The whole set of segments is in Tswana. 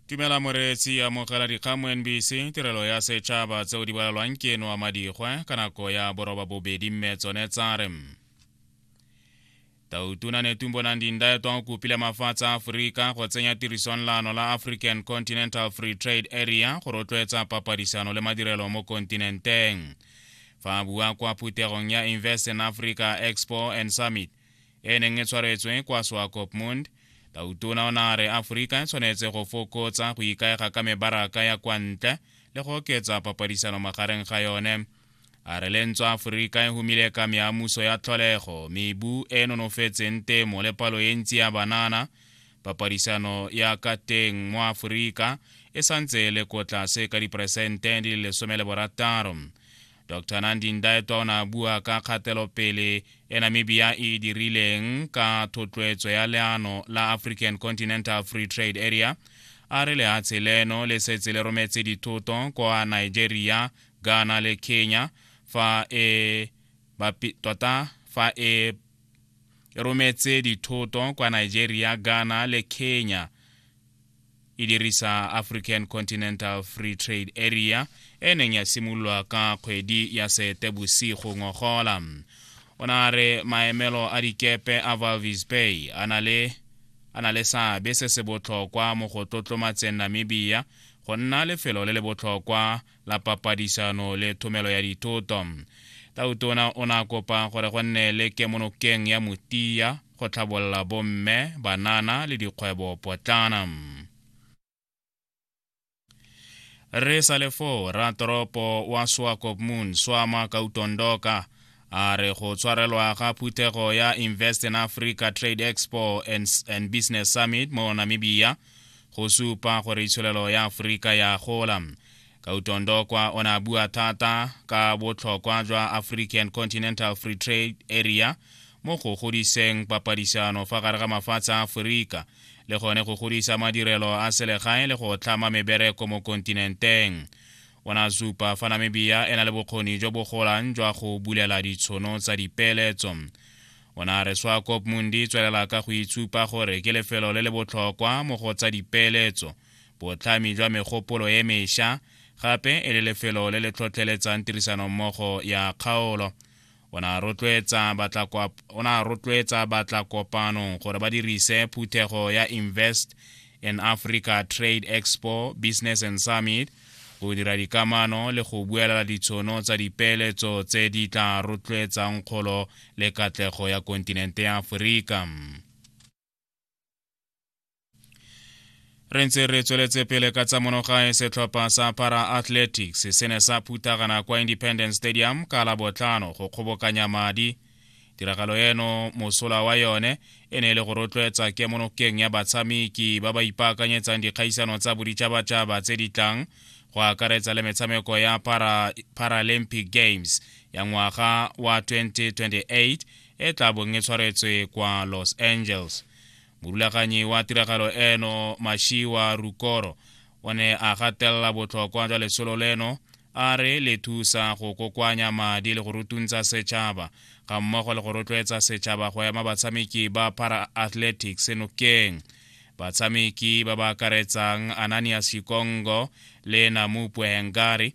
tumela moreetsi amogela dikgang mo nbc tirelo ya setšhaba tseo di bolalwang ke eno a madigwe ka nako ya boroba bobedi mme tsone tsa re tautuna netumbonang dindaetwa o kopile mafatshe a aforika go tsenya tirisong laano la african continental free trade area go rotloetsa papadisano le madirelo mo kontinenteng fa a bua kwa phuthegong ya invest in africa expo and summit e neng e tshwaretswe kwa swakopmund tautona o na re aforika e tshwanetse go fokotsa go ikaega ka mebaraka ya kwa ntle le go oketsa papadisano magareng ga yone a re le ntse aforika e humile ka meamuso ya tlholego mebu e e nonofetseng temo le palo e ntsi ya banana papadisano ya ka teng mo aforika e santse e le ko tlase ka diperesente di le lesome le borataro Dr Nandi Ndaitwa o ne a bua ka kgatelopele e Namibia e e dirileng ka thotloetso ya leano la African Continental Free Trade Area a re lehatshe leno le setse le rometse dithoto kwa Nigeria, Ghana le Kenya fa e tota fa e e rometse dithoto kwa Nigeria, Ghana le Kenya e dirisa african continental free trade area e neng ya simololwa ka kgwedi ya seetebosigo ngogola o na re maemelo a dikepe a valvis bay a na le a na le seabe se se botlhokwa mo go tlotlomatseng namibia go nna lefelo le le botlhokwa la papadisano le thomelo ya dithoto tautona o ne a kopa gore go nne le kemonokeng ya motia go tlhabolola bomme, banana le dikgwebo potlana. Re sa le foo, ratoropo wa Swakopmund Swama Kautondoka a re go tshwarelwa ga phuthego ya Invest in Africa Trade Expo and, and Business Summit mo Namibia go supa gore itsholelo ya Afrika ya gola. Ka utondo kwa o ne a bua thata ka botlhokwa jwa African Continental Free Trade Area mo go godiseng papadisano fa gare ga mafatshe a Aforika le gone go godisa madirelo a selegae le go tlhama mebereko mo kontinenteng. O ne a supa fa Namibia e na le bokgoni jo bo golang jwa go bulela ditshono tsa dipeeletso. O ne a re Swakopmund e tswelela ka go itshupa gore ke lefelo le le botlhokwa mo go tsa dipeeletso, botlhami jwa megopolo e mesha, gape e le lefelo le le tlhotlheletsang tirisanommogo ya kgaolo. O ne a rotloetsa batla kopanong gore ba dirise phuthego ya Invest in Africa Trade Expo Business and Summit go dira dikamano le go buelela ditshono tsa dipeeletso tse di tla rotloetsang kgolo le katlego ya kontinente ya Aforika. re ntse re tsweletse pele ka tsa monogae setlhopha sa para athletics se ne sa phuthagana kwa independence stadium ka la botlhano go kgobokanya madi tiragalo eno mosola wa yone e ne e le go rotloetsa kemonokeng ya batshameki ba ba ipaakanyetsang dikgaisano tsa boditšhabatšhaba tse di tlang go akaretsa le metshameko ya para, paralympic games ya ngwaga wa 2028 e tla bong e tshwaretswe kwa los angeles morulaganyi wa tiragalo eno mashiwa rukoro o ne a gatelela botlhokwa jwa lesolo leno a re le thusa go kokoanya madi le go rutuntsa setšhaba ga mmogo le go rotloetsa setšhaba go ema batshameki ba para athletics nokeng batshameki ba ba akaretsang ananias shikongo le namupwe hengari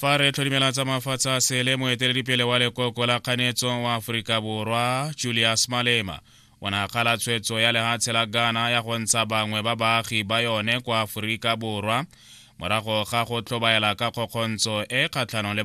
fa re tlhodimela tsa mafatshe a sele moeteledipele wa lekoko la kganetso wa aforika borwa julius malema o ne a kgala tshwetso ya lehatshe la ghana ya go ntsha bangwe ba baagi ba yone kwa aforika borwa morago ga go tlhobaela ka kgokgontsho e kgatlhanong le